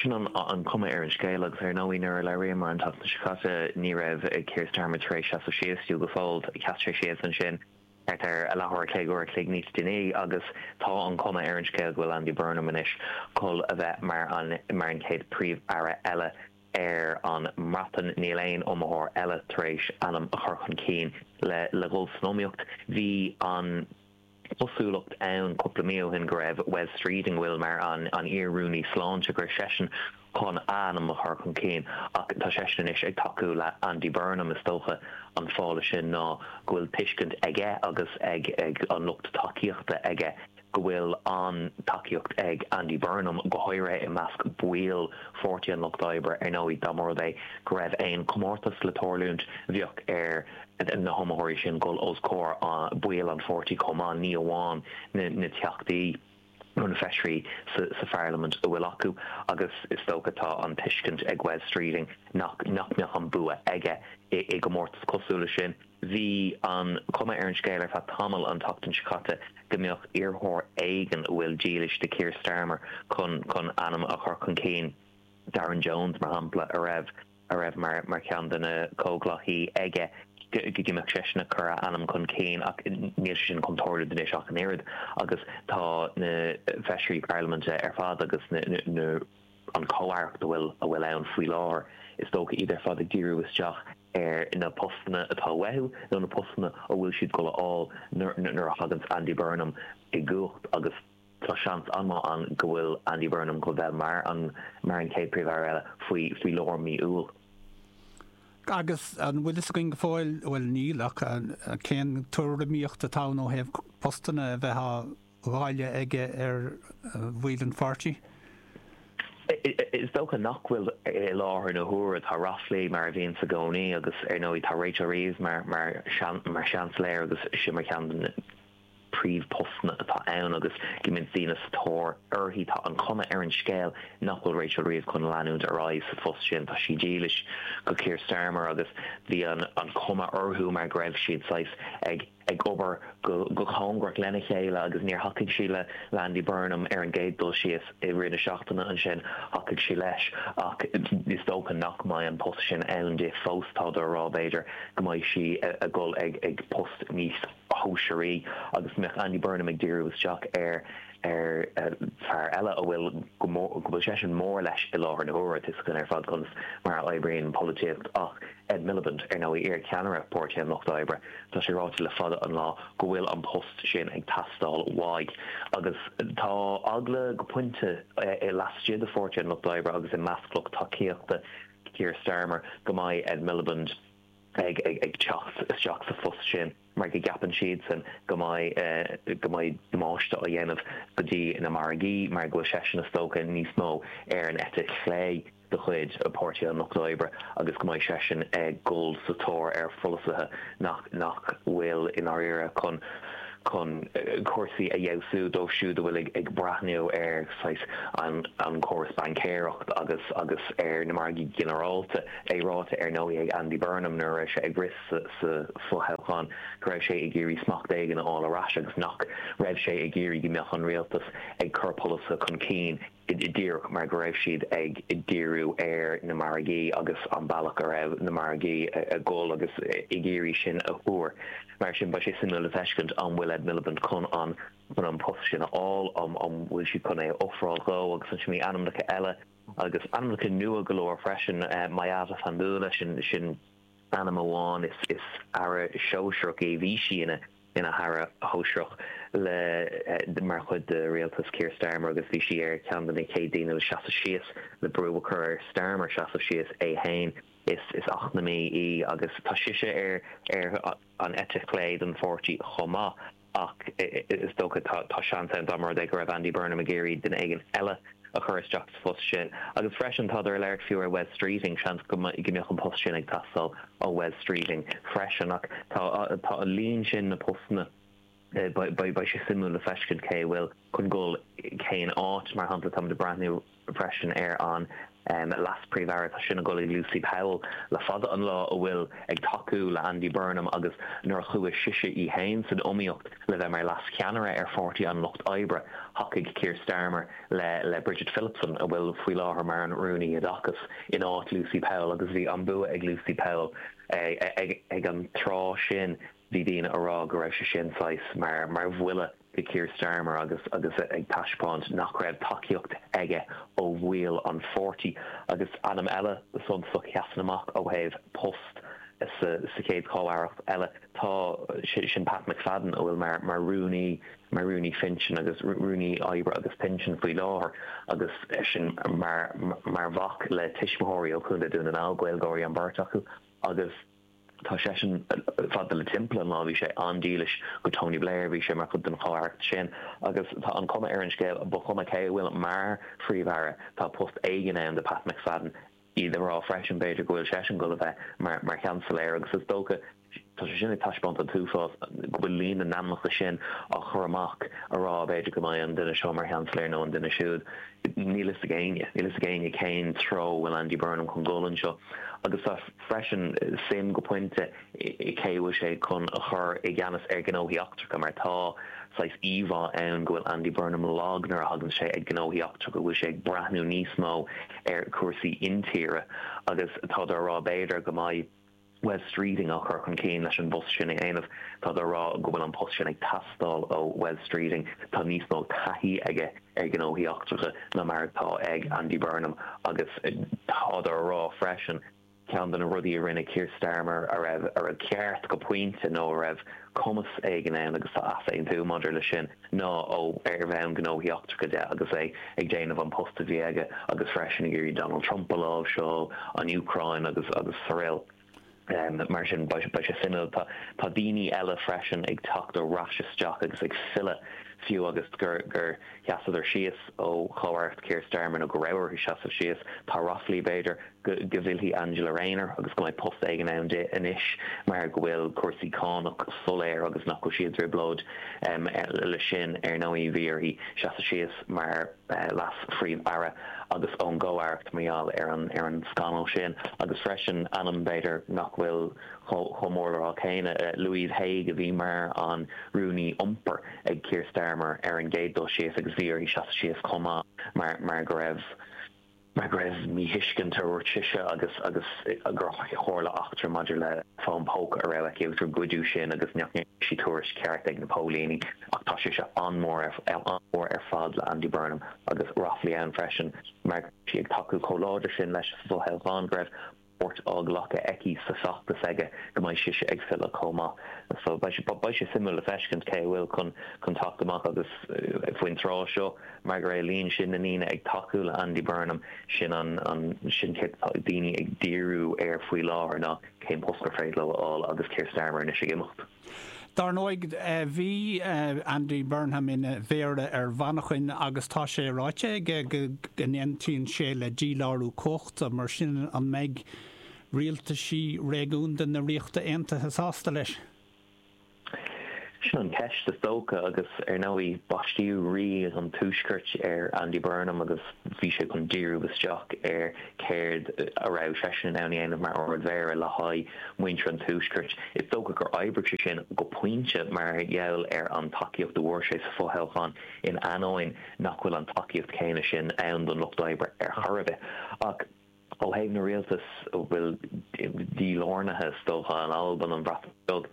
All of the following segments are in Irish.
Sin an chuma ar an scéal agus ar ndóigh nuair a labhraíomar an tseachtain seo caite ní raibh Keir Starmer tar éis seasamh síos, fiú go fóill. Sheas sé síos ansin thart ar leathuair a chloig, uair a chloig níos déanaí agus tá an chuma ar an scéal go bhfuil Andy Burnham anois chun a bheith mar an chéad Príomh-Aire eile ar an mBreatain. Níl aon iomaitheoir eile tar éis ainm a chur chun cinn le dhul san iomaíocht. Bhí an. cosúlacht ann cúpla mí ó shin go raibh Wes Streeting a bhfuil mar an iar-rúnaí sláinte, go raibh seisean chun ainm a chur chun cinn. Ach tá seisean anois ag tacú le Andy Burnham. Is dócha an fáth le sin ná go bhfuil tuiscint aige agus ag an lucht tacaíochta aige go bhfuil an-tacaíocht ag Andy Burnham, go háirithe i measc baill Pháirtí an Lucht Oibre. Ar ndóigh, dá mba rud é go raibh aon chomórtas le tarlúint, bheadh ar. na hiomaitheoirí sin dhul os comhair baill an pháirtí chomh maith, ní amháin na teachtaí nó na feisirí sa pharlaimint a bhfuil acu, agus is dócha tá an tuiscint ag Wes Streeting nach mbeadh an bua aige i gcomórtas cosúil leis sin. Bhí an chuma ar an scéal ar feadh tamaill an tseachtain seo caite go mbeadh iarrthóir éigin a bhfuil dílis do Keir Starmer chun ainm a chur chun cinn, Darren Jones mar shampla, a raibh. a raibh mar cheann de na comhghleacaí aige go mbeadh seisean ag cur a ainm chun cinn ach níl sé sin chun tarlú anois ach an oiread agus tá na feisirí parlaiminte ar fad agus na an chomh-aireacht a bhfuil ann faoi láthair is dócha, iad ar fad ag díriú isteach ar na postanna atá uathu nó na postanna a bhfuil siad ag dul a fháil nuair a thaganns Andy Burnham i gcumhacht agus. Tá seans an-maith ann go bhfuil Andy Burnham chun bheith mar an mar an chéad Príomh-Aire eile faoi faoi lár mí Iúil. Agus an bhfuil fhios againn go fóill, bhuel níl, ach cén tuairimíocht atá ann ó thaobh postanna a bheith á ndáileadh aige ar bhaill an pháirtí? Is dócha nach bhfuil. I láthair na huaire tá raflaí, mar a bhíonns i gcónaí, agus ar ndóigh tá Rachel Reeves mar mar mar Sheansailéir agus sin mar cheann de na príomhphostanna atá ann agus go mbíonns daoine sa tóir uirthi. Tá an chuma ar an scéal nach bhfuil Rachel Reeves chun leanúint ar aghaidh sa phost sin. Tá sí dílis do Keir Starmer agus bhí an chuma orthu mar go raibh siad saghas ag obair go cóngarach lena chéile agus níor thacaigh sí le Andy Burnham ar an gcéad dul síos. I rith na seachtaine ansin thacaigh sí leis ach is dócha nach mbeidh an post sin ann di fós. Tá daoine ag rá b'fhéidir go mbeidh sí ag dul ag post níos. shóisearaí agus mbeadh Andy Burnham ag díriú isteach ar fhear eile a bhfuil go bhfuil seisean mór leis i láthair na huaire. Tuigtear dúinn ar fad conas mar a oibríonn an pholaitíocht ach Ed Miliband, ar ndóigh, iar cheannaire Páirtí an Lucht Oibre, tá sé ráite le fada an lá go bhfuil an post sin ag teastáil uaidh. Agus tá eagla go pointe laistigh de Pháirtí an Lucht Oibre agus i measc lucht tacaíochta Keir Starmer go mbeadh Ed Miliband, ag teacht isteach sa phost sin mar go gceapann siadsan go mbeadh, go mbeadh damáiste á dhéanamh go dtí na margaí mar go bhfuil seisean is dócha níos mó ar an eite chlé de chuid Páirtí an Lucht Oibre agus go mbeadh seisean ag dul sa tóir ar pholasaithe nach, nach bhfuil i ndáiríre chun, chun cúrsaí a fheabhsú dóibh siúd a bhfuil ag breathnú ar an gcóras baincéireacht agus, agus ar na margaí go ginearálta. é ráite ar ndóigh ag Andy Burnham nuair a raibh sé ag rith sa fothoghchán go raibh sé ag iarraidh smacht éigin a fháil ar ais agus nach raibh sé ag iarraidh go mbeadh an rialtas ag cur polasaithe chun cinn díreach mar go raibh siad ag díriú ar na margaí agus an bealach a raibh na margaí ag dul agus ag iarraidh sin a thuar. Mar sin beidh sé suimiúil le feiscint an bhfuil Ed Miliband chun an post sin a fháil, an bhfuil siad chun é a ofráil dhó agus ansin na hainmneacha eile a Agus ainmneacha nua go leor freisin, Miatta Fahnbulleh, sin ainm amháin, is Aire Sóisearach í, bhí sí ina hAire Sóisearach le, mar chuid de rialtas Keir Starmer agus bhí sí ar cheann de na chéad daoine le seasamh síos, le brú a chur ar Starmer seasamh síos é fhéin. Is eacnamaí í agus tá sise ar an eite chlé den pháirtí chomh maith. ach is dócha tá seans ann dá mba rud é go raibh Andy Burnham ag iarraidh duine éigin eile a chur isteach sa phost sin. Agus freisin, tádar ag labhairt fiú ar Wes Streeting, seans go mbeadh an post sin ag teastáil ó Wes Streeting freisin. Ach tá, tá an líon sin na postanna, beidh sé suimiúil le feiscint cé a bhfuil. chun dul cén áit. Mar shampla, táimid ag breathnú freisin ar an leas-Príomh-Aire, tá sin ag dul ag Lucy Powell le fada an lá, a bhfuil ag tacú le Andy Burnham agus nuair a chuaigh sise í fhéin san iomaíocht le bheith mar leas-cheannaire ar Pháirtí an Lucht Oibre, thacaigh Keir Starmer le Bridget Phillipson, a bhfuil faoi láthair mar an Rúnaí Oideachais, in áit Lucy Powell agus bhí an bua ag Lucy Powell ag an tráth sin. Bhí daoine ag rá go raibh sé sin saghas mar bhuille do Keir Starmer agus ag taispeáint nach raibh tacaíocht aige ó bhaill an pháirtí. Agus ainm eile suntasach a sheasann amach ó thaobh post sa chéad chomhaireacht eile ná sin Pat McFadden a bhfuil mar rúnaí mar rúnaí pinsean agus rúnaí oibre agus pinsean faoi láthair agus eisean mar mhac le tuismitheoirí ó Chontae Dhún na nGall, Gaeilgeoirí an bheirt acu agus. Tá seisean fadó timpeall an lá. Bhí sé an-dílis do Tony Blair, bhí sé mar chuid den chomhaireacht sin agus tá an chuma ar an scéal, ba chuma cé a bhfuil mar Phríomh-Aire, tá post éigin ann do Pat McFadden. Táid á rá freisin b'fhéidir go bhfuil seisean ag goil a bheith mar Sheansailéir agus is dócha, tá sé sin ag taispeáint an t-uafás go bhfuil líon na n-ainmneacha sin á gcur amach, a rá b'fhéidir go mbeidh an duine seo mar Sheansailéir nó an duine siúd. Níl fhios ag éinne. Níl fhios ag éinne cén treo a bhfuil Andy Burnham chun goil anseo agus tá. freisin suim go pointe i cé a bhfuil sé chun a chur i gceannas ar ghnóthaí eachtracha mar tá saghas íomhá ann go bhfuil Andy Burnham lag nuair a thagann sé chuig gnóthaí eachtracha, go bhfuil sé ag breathnú níos mó ar chúrsaí intíre agus táid á rá b'fhéidir go mbeidh Wes Streeting á chur chun cinn leis an bpost sin a dhéanamh. Táid á rá go bhfuil an post sin ag teastáil ó Wes Streeting, tá níos mó taithí aige i. ar ghnóthaí eachtracha ná mar atá ag Andy Burnham agus tádar a rá freisin, ceann de na rudaí a rinne Keir Starmer a raibh ceart go pointe nó a raibh cumas éigin ann, agus tá easaontú maidir le sin, ná ó ar bhonn gnóthaí eachtracha de agus é ag déanamh an post a bhí aige agus freisin ag iarraidh Donald Trump a láimhseáil, an Úcráin agus araile. Mar sin, beidh sé suimiúil. Tá daoine eile freisin ag teacht ar ais isteach agus ag filleadh fiú agus gur sheasadar síos ó chomhaireacht Keir Starmer nó go raibh orthu seasamh síos. Tá ráflaí, b'fhéidir, go bhfillfidh Angela Rayner agus go mbeidh post éigin ann di anois mar go bhfuil cúrsaí cánach soiléir agus nach bhfuil sí i dtrioblóid leis sin. Ar ndóigh, bhí uirthi seasamh síos mar. leas-phríomh-aire agus ón gcomhaireacht mar gheall ar an scannal sin agus freisin ainm b'fhéidir nach bhfuil chomh mór le rá céanna, Louise Haigh a bhí mar an rúnaí iompair ag Keir Starmer ar an gcéad dul síos agus bhí uirthi seasamh síos chomh maith mar go raibh. go raibh míthuiscint, a dúirt sise, agus gur tharla eachtra maidir le fón póca a raibh aici agus gur goideadh sin agus nach ndearna sí tuairisc cheart chuig na póilíní. Ach tá sise an-mhór ar fad le Andy Burnham agus ráflaí ann freisin mar go raibh sí ag tacú chomh láidir sin leis sa bhfothoghchán go raibh páirt á glacadh aici sa feachtas aige go mbeidh sise ag filleadh chomh maith. So beidh sé suimiúil le feiscint cé a bhfuil chun teacht amach agus faoin tráth seo mar go raibh líon sin na ndaoine ag tacú le Andy Burnham sin an sin céard atá daoine ag díriú air faoi láthair ná cén post gur féidir leo a fháil agus Keir Starmer anois ag imeacht. Dar ndóigh, bhí Andy Burnham ina Mhéara ar Mhanchain agus tá sé ráite aige go n-aontaíonn sé le dílárú cumhachta, mar sin an mbeidh rialtais réigiúnda na Ríochta Aontaithe sásta leis? Sin an cheist is dócha agus ar ndóigh baistíodh rí an Tuaiscirt ar Andy Burnham agus bhí sé chun díriú isteach ar céard a raibh seisean in ann a dhéanamh mar Ard Mhéara le haghaidh muintir an Tuaiscirt. Is dócha gur oibrigh sé sin go pointe mar gheall ar an tacaíocht a bhfuair sé sa fothoghchán in aineoinn nach bhfuil an tacaíocht chéanna sin ann don Lucht Oibre ar chor ar bith. Ach ó thaobh na rialtas a bhfuil dílárnaithe is dócha, an Alban, an Bhreatain Bheag,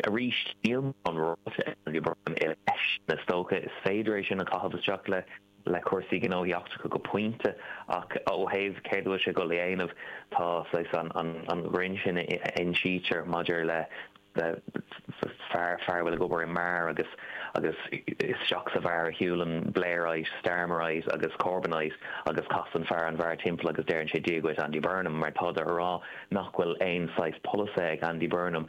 arís níl mórán ráite aige leis sin. Is dócha is féidir é sin a chaitheamh isteach le. le cúrsaí gnóthaí eachtracha go pointe ach ó thaobh céard a bhfuil sé dhul a dhéanamh tá saghas an greann sin a insítear maidir le fear a bhfuil ag obair i mbeár agus agus isteach sa bheár a shiúlann Blairite, Starmerite agus Corbynite agus casann fear an bheáir timpeall agus deireann sé Dia dhuit Andy Burnham mar tá siad a rá nach bhfuil aon saghas polasaithe ag Andy Burnham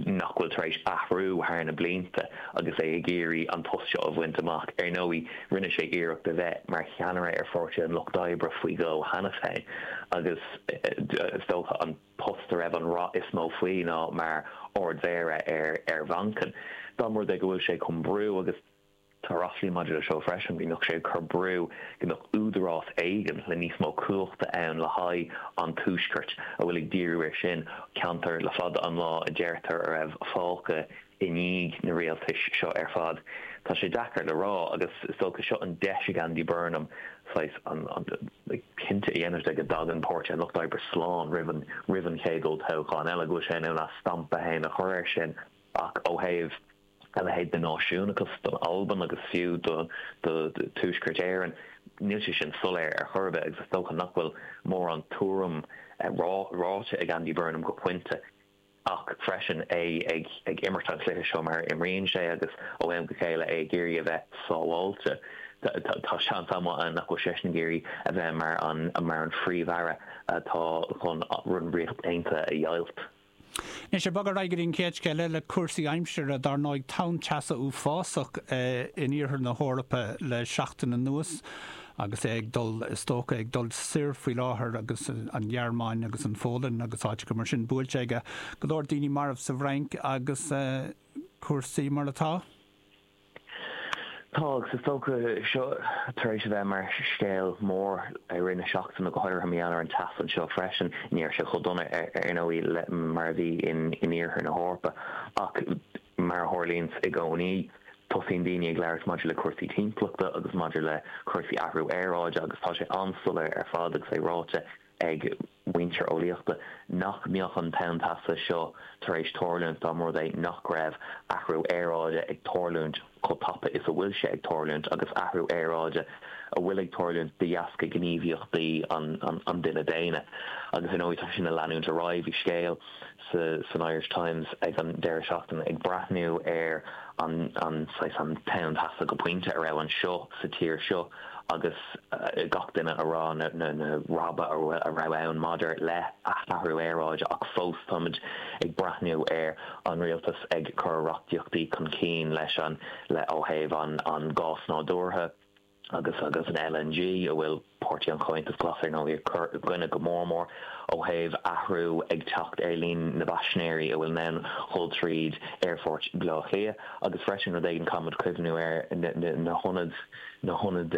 nach bhfuil tar éis athrú thar na blianta agus é ag iarraidh an post seo a bhaint amach. Ar ndóigh, rinne sé iarracht a bheith mar cheannaire ar Pháirtí an Lucht Oibre faoi dhó cheanas féin agus is dócha an post a raibh an rath is mó faoi ná mar Ard-Mhéara ar Mhanchain. Dá mba rud é go bhfuil sé chun brú agus. Tá raflaí maidir le seo freisin, go mbeadh sé ag cur brú, go mbeadh údarás éigint le níos mó cumhachta ann le haghaidh an Tuaiscirt a bhfuil ag díriú ar sin, ceantar le fada an lá a deirtear a raibh fágtha i ndiaidh na rialtais seo ar fad. Tá sé deacair le rá agus is dócha seo an deis ag Andy Burnham saghas cinnte a dhéanamh de go dtagann Páirtí an Lucht Oibre slán roimh an chéad olltoghchán eile, go bhfuil sé in ann a stampa fhéin a chur ar sin ach ó thaobh. a leithéid de náisiúnachas don Albain agus fiú do Tuaisceart Éireann, níl sé sin soiléir ar chor ar bith agus is dócha nach bhfuil mórán tuairim ráite ag Andy Burnham go pointe ach freisin é ag imirt an chluiche seo mar a imríonn sé agus ó am go chéile é ag iarraidh a bheith sábháilte. Tá seans an-mhaith ann nach bhfuil seisean ag iarraidh a bheith mar an Phríomh-Aire atá chun an Ríocht Aontaithe a dheighilt. Anois, ag bogadh ar aghaidh go dtí an chéad scéal eile, cúrsaí aimsire. Dár ndóigh, tonn teasa uafásach in iarthar na hEorpa le seachtain anuas agus é ag dul, is dócha, ag dul soir faoi láthair agus an Ghearmáin agus an Phólainn agus áiteacha mar sin buailte aige. Go leor daoine marbh sa bhFrainc agus cúrsaí mar atá. Tá Agus is dócha seo tar éis a bheith mar scéal mór i rith na seachtaine, go háirithe in Éirinn an tseachtain seo freisin. Ní raibh sé chomh dona ar ndóigh mar a bhí in iarthar na hEorpa ach mar a tharlaíonns i gcónaí tosaíonn daoine ag labhairt maidir le cúrsaí timpeallachta agus maidir le cúrsaí athrú aeráide agus tá sé an-soiléir ar fad agus é ráite ag muintir eolaíochta nach mbeadh an tonn teasa seo tar éis tarlúint dá mba rud é nach raibh athrú aeráide ag tarlúint chomh tapa is a bhfuil sé ag tarlúint, agus athrú aeráide a bhfuil ag tarlúint de dheasca gníomhaíochtaí an duine daonna. Agus ar ndóigh tá sin ag leanúint ar aghaidh. Bhí scéal san Irish Times ag an deireadh seachtaine ag breathnú ar an tonn teasa go pointe a raibh anseo sa tír seo. agus gach duine a rá na rabhaidh a raibh ann maidir le h-athrú aeráide ach fós táimid ag breathnú ar an rialtas ag cur reachtaíochtaí chun cinn leis an le ó thaobh an gás nádúrtha agus agus an LNG a bhfuil Páirtí an Chomhaontais Ghlais ar ndóigh ag cur i gcoinne go mór mór ó thaobh athrú ag teacht ar líon na bpaisinéirí a bhfuil in ann dhul tríd aerfort Bhaile Átha Cliath agus freisin rud éigin caithfimid cuimhniú air na hionaid na hionaid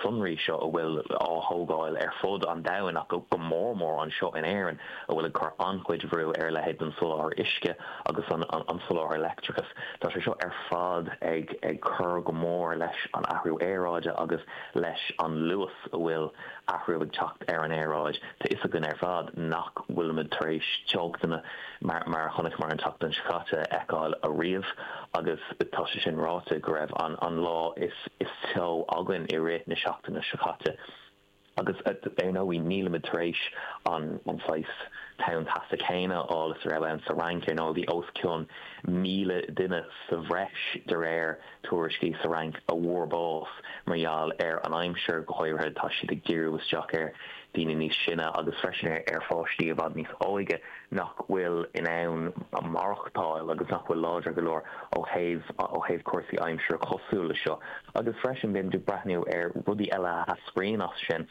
sonraí seo a bhfuil á thógáil ar fud an domhain ach go mór mór anseo in Éirinn a bhfuil ag cur an-chuid bhrú ar a leithéid den soláthar uisce agus an soláthar leictreachais. Tá sé seo ar fad ag cur go mór leis an athrú aeráide agus leis an luas a bhfuil athrú ag teacht ar an aeráid. Tá fhios againn ar fad nach bhfuilimid tar éis teochtanna. Mar a chonaiceamar an tseachtain seo caite, a fheiceáil ariamh agus tá sé sin ráite, go raibh an lá is teo againn i rith na seachtaine seo caite. Agus ar ndóigh, nílimid tar éis an saghas tonn teasa céanna a fháil is a raibh ann sa Fhrainc. Ar ndóigh, bhí os cionn míle duine sa bhreis, de réir. tuairiscí sa Fhrainc a bhfuair bás mar gheall ar an aimsir, go háirithe tá siad ag díriú isteach ar daoine níos sine agus freisin ar pháistí i bhfad níos óige nach bhfuil in ann maireachtáil agus nach bhfuil láidir go leor ó thaobh ó thaobh cúrsaí aimsire cosúil le seo. Agus freisin bímid ag breathnú ar rudaí eile a eascraíonn as sin.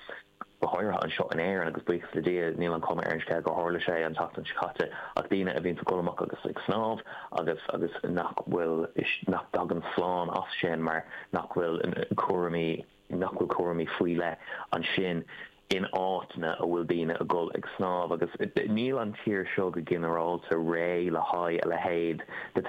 go háirithe anseo in Éirinn, agus buíochas le Dia, níl an chuma ar an scéal gur tharla sé an tseachtain seo caite ach daoine a bhíonn ag gabháil amach agus ag snámh agus agus nach bhfuil, nach dtagann slán as sin mar nach bhfuil cúraimí, nach bhfuil cúraimí faoi leith ansin in áiteanna a bhfuil daoine a dhul ag snámh agus níl an tír seo go ginearálta réidh le haghaidh a leithéid de